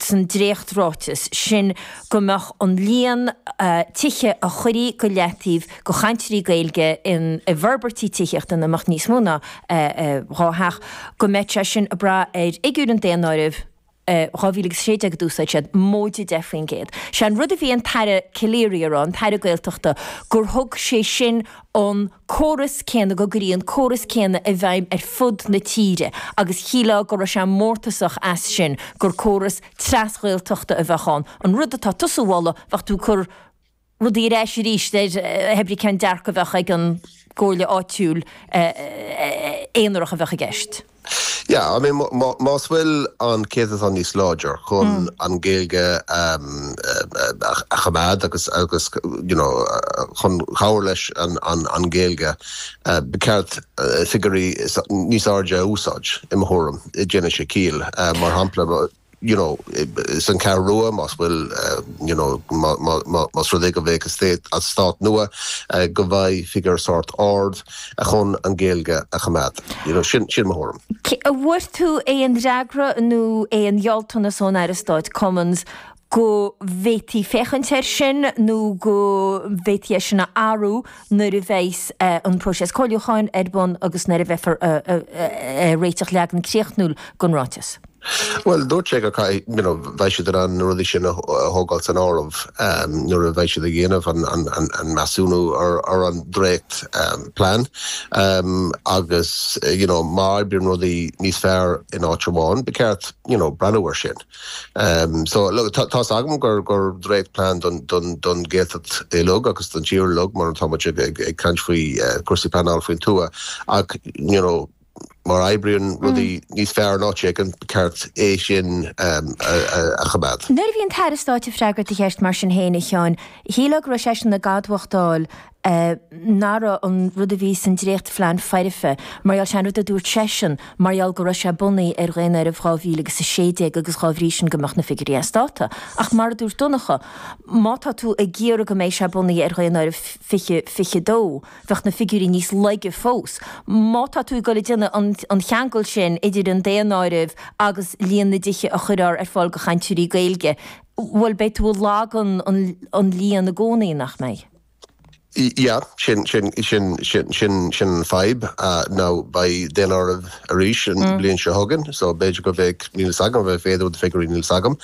san dréacht-ráiteas sin go mbeadh an líon tithe a chuirfí go leataobh go chainteoirí Gaeilge in i bhforbairtí tithíochta ina mbeadh níos mó ná dhá theach, go mbeadh sé sin ag brath ar fhigiúir an daonáirimh 2016 a d'úsáid siad, móide 10 faoin gcéad. Sé an rud a bhí an tAire Calleary ag rá, an tAire Gaeltachta, gur thug sé sin an. córas céanna go gcuireann an córas céanna i bhfeidhm ar fud na tíre agus shílfeá go raibh sé mórtasach as sin gur córas tras-Ghaeltachta a bheadh ann, an rud atá tusa a mholadh bheadh tú ag cur rudaí ar ais arís ar b'ibí cén dearcadh a bheadh ag an gcomhairle áitiúil aonarach a bheadh i gceist. Yeah, I mean, más bhfuil an céatadán níos láidre chun an Ghaeilge a choimeád agus you know chun chabhair leis an Ghaeilge, ba cheart figiúirí níos airde a úsáid, i mo thuairim. Déanfadh sé ciall. Mar shampla. you know, san Cheathrú Rua, más bhfuil, you know, má, má, má, más rud é go bheidh eastát nua, go bheidh figiúr sórt ard chun an Ghaeilge a choimeád. You know, sin, sin mo thuairim. An bhfuair tú aon fhreagra nó aon ghealltanas ón Aire Stáit Cummins go bhféadfaí féachaint air sin nó go bhféadfaí é sin a athrú nuair a bheas an próiseas comhairliúcháin ar bun agus nuair a bheifear a, a, a, a, a réiteach leagan críochnúil den ráiteas? Bhuel, dúirt sé go, you know, bheadh siad in ann na rudaí sin a thógáil san áireamh nuair a bheidh siad ag dhéanamh an measúnú ar an dréachtphlean agus, you know, má oibríonn rudaí níos fearr in áit amháin, ba cheart, you know, breathnú air sin. So, look, tá's agam gur dréachtphlean don Ghaeltacht uilig agus don tír uilig mar atá muid ag caint faoi cúrsaí pleanála faoin tuath ach, you know, má oibríonn rudaí níos fearr in áit éigin, ba cheart é sin a choimeád. Nuair a bhí an tAire Stáit ag freagairt do cheist mar sin féin, a Sheáin, shílfeá go raibh seisean ag admhachtáil nach raibh an rud a bhí san dréachtphlean foirfe mar gheall, sé an rud a dúirt seisean, mar gheall go raibh sé bunaithe ar Dhaonáireamh 2000 agus 16 agus dhá bhrí sin go mbeadh na figiúirí as dáta. Ach mar a dúirt Donncha, má tá tú ag iarraidh go mbeidh sé bunaithe ar Dhaonáireamh 2022, bheadh na figiúirí níos laige fós. Má tá tú ag dul ag déanamh an cheangail sin idir an daonáireamh agus líon na dtithe a chuirfear ar fáil do chainteoirí Gaeilge, bhuel, beidh tú ag lagú an líon i gcónaí, nach mbeidh? Yeah, sin an fadhb, no beidh daonáireamh. arís an bhliain seo chugainn so b'fhéidir go mbeidh, níl a fhios agam, b'fhéidir do figiúirí, níl a fhios agam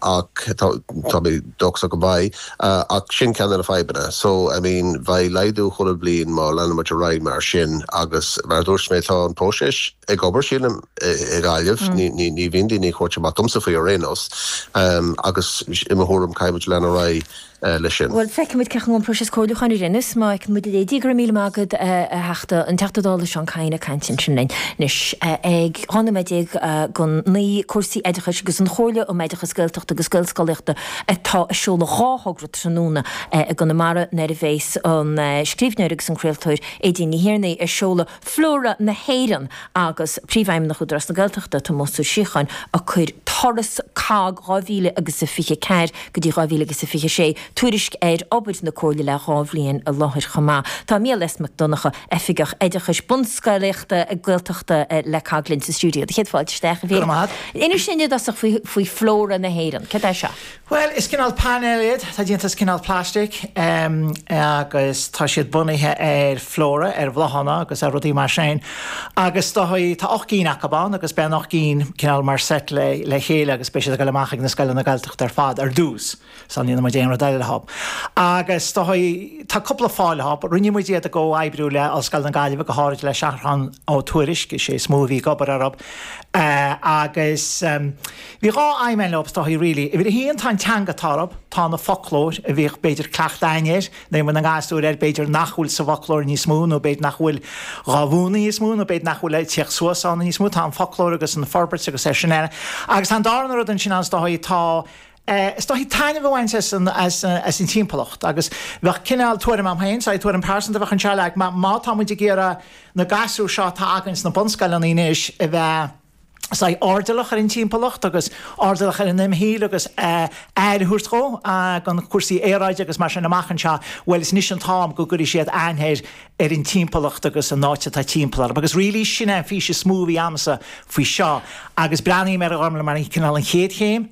ach tá tá mé dóchasach go mbeidh ach sin ceann de na fadhbanna so I mean bheidh laghdú chuile bhliain má leanann muid ar aghaidh mar sin agus mar a dúirt mé tá an próiseas ag obair sílim i nGaillimh, ní ní bhíonn daoine ag tabhairt amach domsa faoi ar aon nós agus i mo thuairim caithfidh muid leanacht ar aghaidh. leis sin. Bhuel, feicfimid cén chaoi an próiseas comhairliúcháin a rinneadh, má fheiceann muid a leithéid, go raibh míle maith agat, a Theachta, an Teachta Dála Seán Kyne ag caint ansin linn. Anois, ag 12 nóiméad go 9, cúrsaí oideachais agus an Chomhairle um Oideachas Gaeltachta agus Gaelscolaíochta atá ag seoladh dhá thogra tráthnóna i gConamara nuair a bheas an scríbhneoir agus an craoltóir Aedín Ní Thiarnaigh ag seoladh Flóra na hÉireann agus Príomhfheidhmeannach Údarás na Gaeltachta, Tomás Ó Síocháin, ag cur Turas COGG 2000 agus a 24 go dtí 2000 agus a 26 tuairisc ar obair na Comhairle le dhá bhliain i láthair chomh maith. Tá Mícheál S. Mac Donnacha, Oifigeach Oideachais Bunscolaíochta Gaeltachta le COGG linn sa stiúideo. Do chéad fáilte isteach, a Mhíchíl. Inis linn i dtosach faoi faoi Flóra na hÉireann. Cad é seo? Bhuel, is cineál painéil iad. Atá déanta as cineál plaistic agus tá siad bunaithe ar flóra, ar bhláthanna agus ar rudaí mar sin. Agus is dóigh, tá ocht gcinn acu ann agus beidh na hocht gcinn cineál mar seit le chéile agus beidh siad ag gabháil amach ag na scoileanna Gaeltachta ar fad ar dtús. Sula ndéanann muid aon rud eile leo. Agus is dóigh, tá cúpla fáth leo. Rinne muid iad i gcomhoibriú le Ollscoil na Gaillimhe, go háirid le Seathrán Ó Tuairisg, is é is mó a bhí ag obair orthu. Agus. Bhí dhá aidhm a'inn leob, is dóigh, really. Uimhir a haon, tá an teanga atá orthub, tá an foclóir a bhíodh, b'fhéidir, cleachtadh a'inn air, nuair a bhí muid ina ngasúir, b'fhéidir nach bhfuil sa bhfoclóir níos mó, nó b'fhéidir nach bhfuil dhá mhúnadh níos mó, nó b'fhéidir nach bhfuil ag tíocht suas ann níos mó, tá an foclóir agus an fhorbairt agus mar sin eile. Agus tá an darna rud ansin ann, is dóigh, tá, is dóigh, taitneamh a bhaint as an, as, as an timpeallacht. Agus bheadh cineál, tuairim agam féin, sorry, tuairim pearsanta a bheadh ansin, like, má, má tá muid ag iarraidh na gasúir seo atá againn sna bunscoileanna anois a bheith, sách airdeallach ar an timpeallacht agus airdeallach ar an imshaol agus aire a thabhairt dhó, i ngeall cúrsaí aeráide agus mar sin amach anseo, bhuel, is anois an t-am go gcuirfidh siad aithne air, ar an timpeallacht agus an áit atá timpeall orthub. Agus really, sin é an fhís is mó a bhí agamsa faoi seo agus breathnaím ar i ndáiríre mar cineál an chéad chéim,